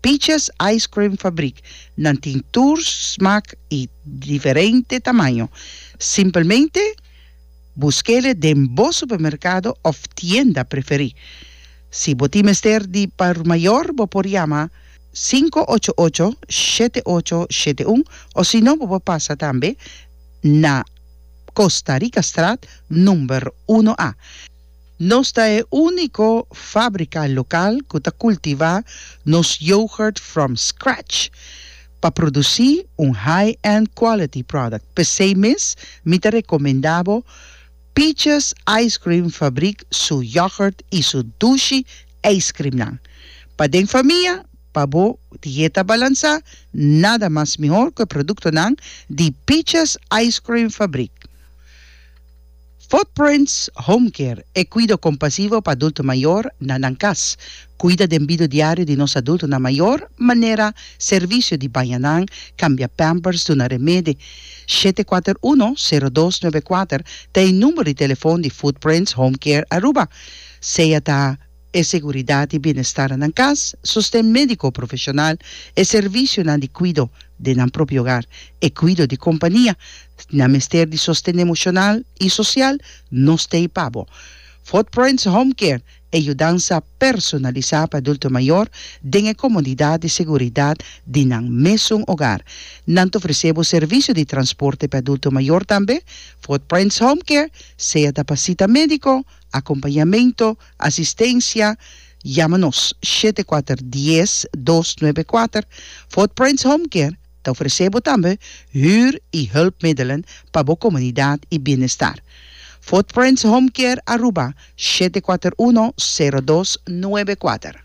Peaches Ice Cream Fabriek, nan tin tur smak i diferente tamaño. Simpelmente busk'e den bo supermerkado òf tienda preferí. Si bo tin mester di por mayor bo por yama sinku ocho ocho, shete ocho, shete un osino bo por pasa tambe na Costa Ricastraat number uno A. Nos ta e úniko fábrika lokal ku ta kultivá nos yoghurt from scratch pa produsí un high-end quality product. P'esei mes mi ta rekomendá bo Peaches Ice Cream Fabrik su yoghurt i su dushi eiskrimnan. Pa den famia, pa bo dieta balansá, nada mas mihor ku e produktonan di Peaches Ice Cream Fabrik. Footprints Home Care, e kuido kompasivo pa adulto mayor na nan kas. Kuida den bido diario di nos adultonan mayor, manera servisio di baña nan, kambia pampers, duna remede. Shete kuater uno, sero dos nuebe kuater ta e numero di telefon di Footprints Home Care Aruba, sea ta. e seguridat i bienestar nan kas, sosten médiko profeshonal, e servisionan di kuido den nan propio ogar, e kuido di kompania, nan mester di sosten emoshonal i sosial, no stay pa bo. Footprints Home Care, e yudansa personalisá pa adulto mayor den e komodidat i seguridat di nan mesun ogar. Nan ta ofresé bo servisio di transporte pa adulto mayor tambe. Footprints Home Care, sea ta pa sita médiko, akompañamentu, Asistencia, Yama nos shete kuater dies dos nuebe kuater. Footprints Home Care ta ofresé bo tambe huur i hulpmiddelen pa bo komunidat i bienestar. Footprints Home Care Aruba shete kuater uno sero dos nuebe kuater.